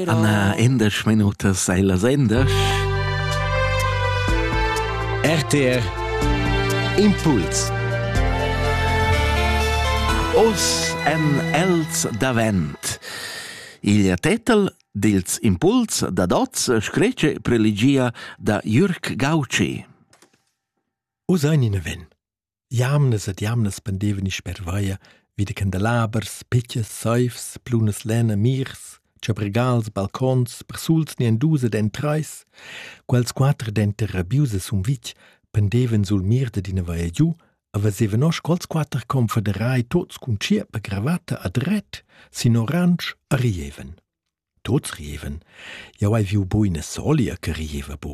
Anna endesch minutas sei las endesch. RTR Impuls Os en els davent. Il tetel dils impuls da dots screce prelegia da Jürg Gauci. Us ein in ven. Jamnas ed jamnas pendevani sper vaia vi da candelabers, pitschas, saivs, plunas lenna, mirs, chabregals, balcons, persuls ni en dus ed en trais. Quels quatter denter rabius e sumvitg pendevan sul mir dad ina vaia giu e vesevan oz quels quatter confederai tuts cun tschierpa cravatta a dret, sin oransch e rievan. Tuts rievan. Jau hai viu buina solia che rieva bu.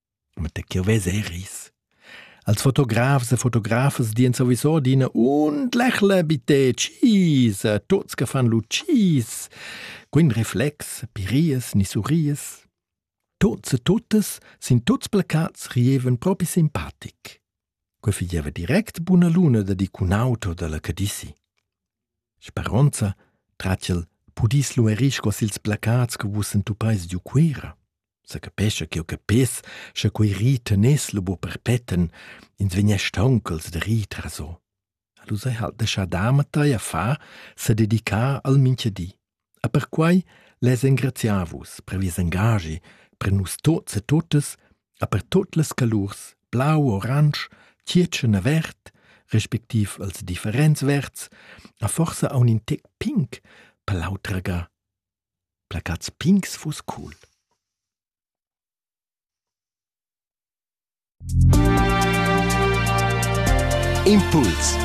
Ma da ch'jeu vess er ris. Als fotografs e fotografas dien sowieso adina und lächle bitte tschis a tuots che fan lu tschis. Quin reflex, pirias ni surries. Tuots e tuttas sin tuts placats rievan propi simpatic. Quei figeva direct buna luna da dir cun auto dalla Cadici. Speronza trat ch'el pudis luerir sco sils placats che vus entupais giu Cuera. Sa capescha ch'jeu capess, sche quei ri teness lu buca perpetten, ins vegn aunc als da rir traso. Alura ha'l deschà Damatei a far s'ha dedichà al mincha di. E perquai less engraziar vus per vies engaschi per nus tuots e tuttas e per tuot las calurs blau, oransch, tschiertschen e verd, respectiv els differents verds, e forsa aun in tec pink per l'autraga. Placats pinks fuss cool. Impuls